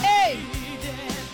ee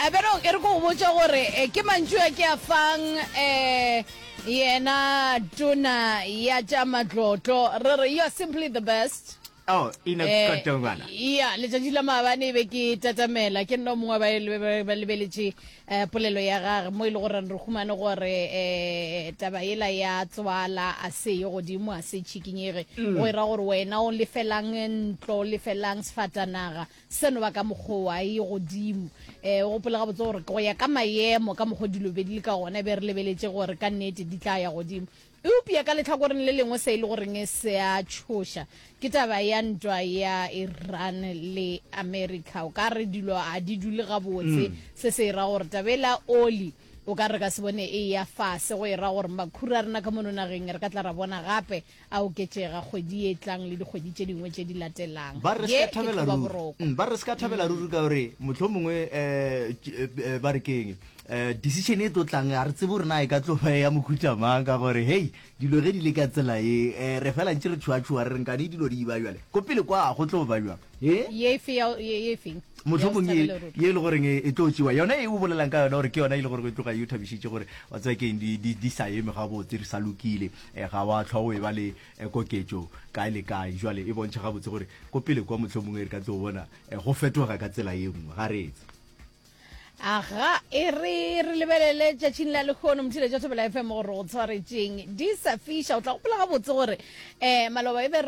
a bere e re ko go botša gore eh, ke mantšu a ke a fang um yena tona ya tša matlotlo re re you are simply the best oh ina Eh, kotongwana ya letšatši la maabane e be ke tatamela ke nna o mongwe wa ba le- ba- ba lebeletše um polelo ya gage mo e le goreng re humane gore um taba ela ya tswala a se ye godimo a se tšhikinyege go e ra gore wena o lefelang ntlo o lefelang sefatanaga Seno ba ka mokgowa a e godimo. E, o gopole gabotse gore go ya ka mayemo ka mokgo dilo be di le ka gona, e be re lebeletše gore ka nnete di tla ya godimo. Eupja ka lehlakoreng le lengwe se e le goreng se a tšhoša ke taba ya ntwa ya Iran le America. O ka re dilo a di dule gabotse, se se e ra gore taba ela oli o ka re re ka se bone e ya fase, go e ra gore makhura a rena ka mono nageng re ka tla ra bona gape a oketšega kgwedi e tlang le dikgwedi tše dingwe tše di latelang ba re se thabela ruri mm, ba re se thabela ruri ka gore motlho mongwe eh, eh, eh, ba re keng decision e tlo tlang a re tsebo rena e ka tlo ya mokhutša mang ka gore hei dilo ge di le ka tsela e re fela ntse re tšhoatšhoa re renkane dilo di iba jale ko pele kwa go tlo ba jang motlhomong e, ye e le goreng e, e tlo tsewa yona e o bolelang ka yona gore ke yona e le gore e tloga e o thabišitše gore wa tseba keng di sa eme gabotse re sa lokile E, ga wa hlwa o e ba le e, koketšo kae le kae. Jwale e bontšha gabotse gore ko pele kwa mohlomongwe re ka tlo bona e, go fetoga ka tsela ye nngwe. Ga re etse. Aga, e re re lebelele tšatšing la lekgono mothile tša thobela fm gore go tshwaretšeng di sa fiša o tla gopola gabotse gore um maloba e be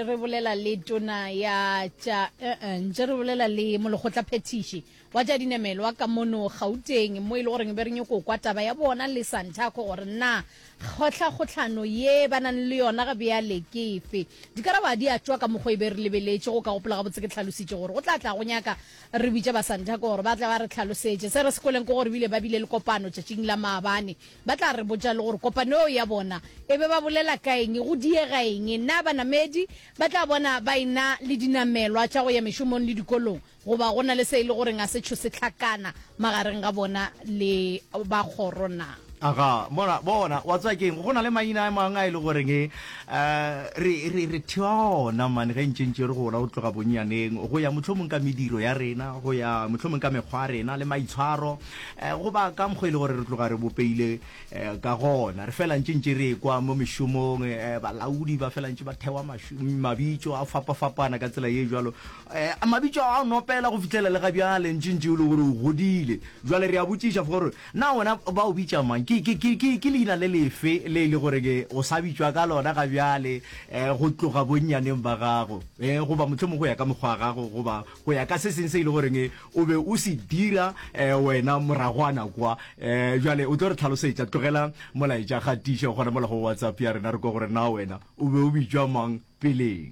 re bolela le tona ya tša uh-uh, ntše re bolela le molekgotlaphethiši Wa tša dinamelwa ka mono Gauteng mo e le gore be re nyoko kwa taba ya bona le Santaco gore na kgohlakgohlano ye ba nang le yona ga bjale ke efe. Dikarabo ga di a tšwa ka mokgo e be re lebeletše. Go ka gopola gabotse ke hlalositše gore go tla tla go nyaka re bitše ba Santaco gore ba tle ba re hlalosetše. Se re se kweleng ke gore bile ba bile le kopano tšatšing la maabane. Ba tla re botša le gore kopano eo ya bona e be ba bolela ka eng, go diega eng, na banamedi ba tla bona ba e-na le dinamelwa tša go ya mešomong le dikolong. Goba go na le se e le goreng a se tšho se hlakana magareng ga bona le ba kgoro na? Aga, bona, bona, wa tseba keng, go na le maina a mangwe a e le goreng e, uh, re, re, re thewa ona, mane, ge ntše ntše re gola go tloga bonnyaneng, go ya mohlomong ka mediro ya rena, go ya mohlomong ka mekgwa ya rena le maitshwaro, uh, goba ka mokgwa e le gore re tloga re bopeile uh, ka gona. Re fela ntše ntše re kwa mo mešomong, uh, balaodi ba fela ntše ba thewa mabitso a fapafapana ka tsela ye jwalo. A mabitso a gago no pela go fihlela le ga bjale ntše ntše o le gore o godile? Jwale re a botšiša for gore na wena ba o bitša mang? Ke, ke, ke, ke, ke leina le lefe le e le gore ke o sa bitšwa ka lona ga bjale eh, go tloga bonnyaneng ba gago eh, goba mohlomong go ya ka mokgwa wa gago goba go ya ka se seng se e le goreng o be o se dira eh, wena moragwana kwa eh, jwale o tlo re tlhalosetša. Tlogela molaetša kgatiša gona mola go WhatsApp ya rena re kwa gore na wena o be o bitšwa mang peleng.